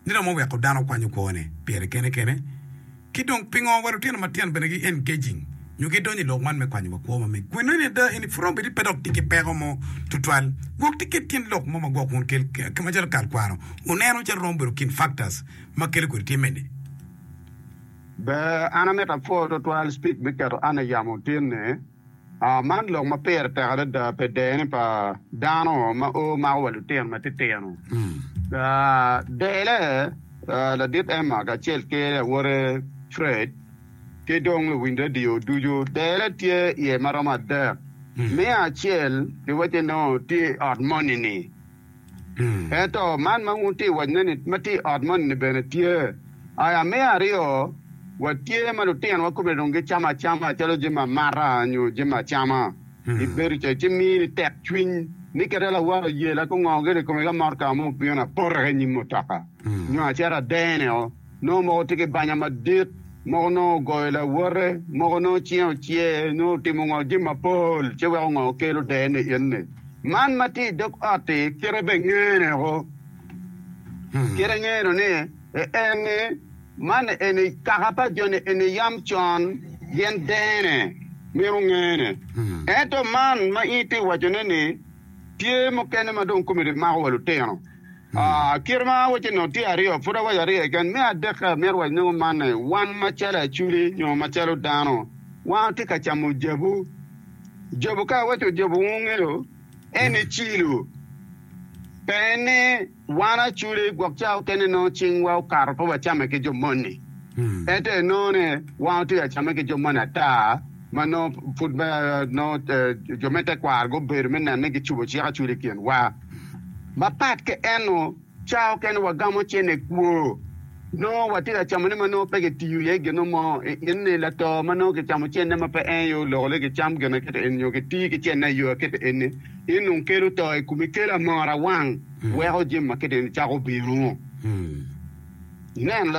ni romo weko dano kwanyo kwone pire kene kene? Ki dong pingo wa lutino matino bene gi engaging nyo gi donyo i lok man me kwanyo wa kwo ma mege? Kwene en aye ada, en ipuro bedi pe dok tye ki peko mo tutwal. Gwok tye kit gin lok mo ma gwok wun kel ki macalo kal kwaro wuneno calo romo bedo kin factors ma kelo kwede tye mene? Ber, an amito apwoo tutwal speak me keto Anna yamo tin ni. Man lok ma pire tek adada pi dene pa dano ma o mako wa lutino matitino. Dele, ladit Emma kacel ki awote Fred, ki dong luwiny redio ducu, dele tye iye ma romo adek. Me acel, giwacci nongo tye i ot moni-ni. Ento man ma wun wutye ka wacone-ni ma tye i ot moni bene tye. I aa me aryo, watye ma lutinwa kome dong gicamo acama calo jami amata nyo jami acama. Ibedo ca ci mini tekcwiny ni kit ma lawala oyela ki ongongo gire i kome ka motka mo obino apota ki i nyim mutoka nyo acito adene-o. Nongo moko tye ki banya madit, moko nongo ogoyo lawote, moko nongo cinge ocer, nyo otimo ngo jami mapol ci weko ngo kelo der ni in-ni. Man ma tye i dog ot-ti kite bene ngene woko, kite ngeno ni en-ni man eni kaka pa jo-ni eni yam con gin dene mito ngene. Ento man ma in itye wacone-ni tye mukene ma dong kome rimako wa lutino. Kite ma awacce nut tye aryo, pud awaco aryo keken. Me adekke, amito waco nongo man ni, wan macalo Aculi nyo macalo dano, wan watye ka camo jabu. Jabu, ka awaco jabu wungeyo, en aye cilo. Pe en ni wan Aculi gwok ca okene nongo cingwa okato pe wacame ki jo moni. Ento enongo ni wan watye ka camme ki jo moni ata ma nongo pud nongo jo me tekwaro gubedo me neno ni gicubo cik Aculi i kinwa. Mapat ki eno, cawa okene wagamo cene kwo. Nongo watye ka camone ma nongo pe kitiyo iye gino mo. I in-ni, lato ma nongo kicamo cene ma pe en aye olokone kicam gin aketa eni nyo kitiyo ki cene i yo aketa eni, in dong kelo to i komi. Kelo amora wang weko jami aketa eni cako bino. Nen,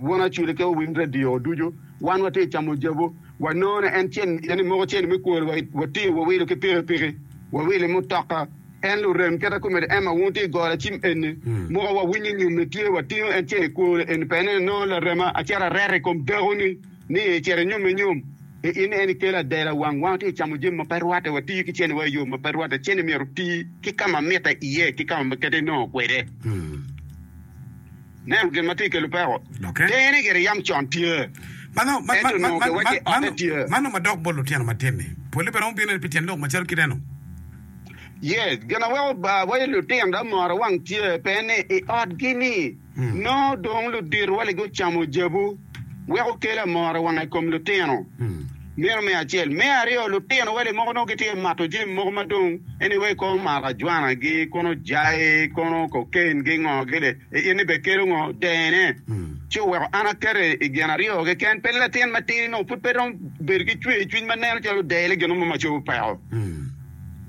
won acwele ki owiny radio ducu wan watye ka camo jabu. Wanongo en tye i ni moko cen me kwori wa wa tingo wa wilo ki piki piki wa wilo i mutoka en lurem keta komedi Emma wun tye i goro acim eni moko wa winyo nyome tye wa tingo en cen i kwori eni pene ni nongo larema a cito areto i kom dako ni ni i cito i nyome nyom i in eni kelo adela wang wang tye camo jami ma pe rwate wa tiyo ki cene wa i yo ma pe rwate cene myero oti ki kama mitte iye ki kama ma kete nongo kwede. Nen gin ma tye ka kelo peko. Tenge ni gire yam con tye, ento onongo giwacci ote tye. Man nongo madok bot lutino matini. Pole bene romo bino pi tyen lok macalo kit eno. Yes, gin ma weko awaco lutino dok moro wang tye pe ni i otgi-ni nongo dong luditowa-ni gucamo jabu, weko kelo amora wang i kom lutino. Meno me acel. Me aryo, lutino wele moko nongo gitye ka mato jami moko ma dong en iwaci kong marajwanagi, kono jai, kono kokain ki ngo gire. I in ni be kelo ngo? Dene. Ci oweko an akete i gin aryo keken. Pele latin matidi nongo pud pe romo bedo ki cwer i cwiny ma neno calo odele gin mo ma cobo peko.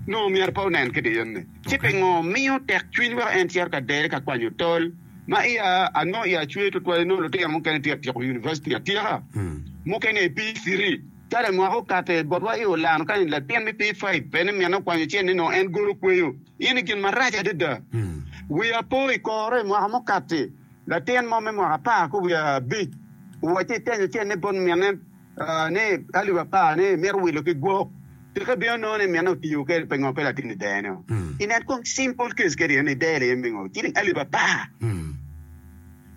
Nongo myero pe onen ki diyo-ni. Ci pingo miyo tek cwiny weko en cito ka dele ka kwanyo tol? Ma iya anongo iya cwer tutwal inongo lutino mukene tye ka tyeko yunivaciti atyeka, mukene i P3. Kare mwaka okato i botwa i Orlando kani latin me P5 pe ni minne okwanyo cen ni nongo en golo kweyo in i gin marac adada. Wiya po i koro i mwaka mukatti, latin mo me mwaka apar ki wiye abic owacci itenyo cen ni bot minne, ni alip apar ni mito wilo ki gwok, tika ibino nongo ni minne otiyo kwede pingo pe latin i dero nio? I net kom simple case kadi en idero aye mingo ciling alip apar.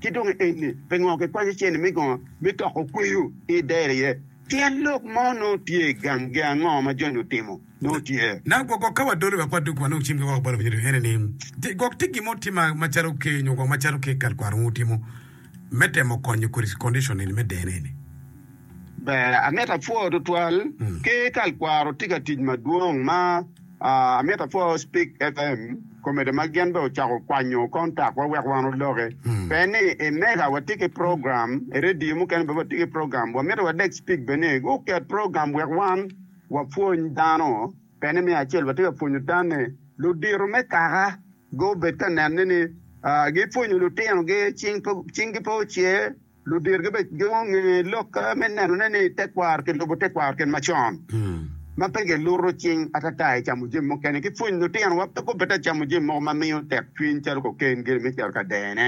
Ki dong eni pingo kikwanyo cene me gongo me toko kweyo ci idero aye? Tyen lok mo nongo tye gangi ango ma Joni otimo? nongo tye. Nang gwok gwok ka wadolo wek wadog wa nong cimgi woko balo winyo dwe ene ni ti gwok ti gin mo ti ma ma calo ke nyo gwok ma calo ke kal kwaro ngu timo me temo konyo kodi condition eni me deno eni. Ber amito apwo tutwal ke kal kwaro ti ka tic madwong ma amito apwo speak FM comedy ma gin be ocako kwanyo contact wa wek wan oloke pe ni i mega wati ki program i radio mukene be wati ki program wa mito wadek speak be ni gu ket program wek wan Wapwony dano. Pene me acel watye ka pwonyo tanne ludito me kaka gubed ka nenne ni gipwonyo lutinogi cinggi pe ocer, luditgi bene gunge lokke me nenone ni tekwaro kilubo tekwaro kit macon ma pe kiluto cing atata i camo jami mukene. Ki pwonyo lutinowa pe gubed ka camo jami mogo ma miyo tekcwiny calo koken gire me cito ka dene.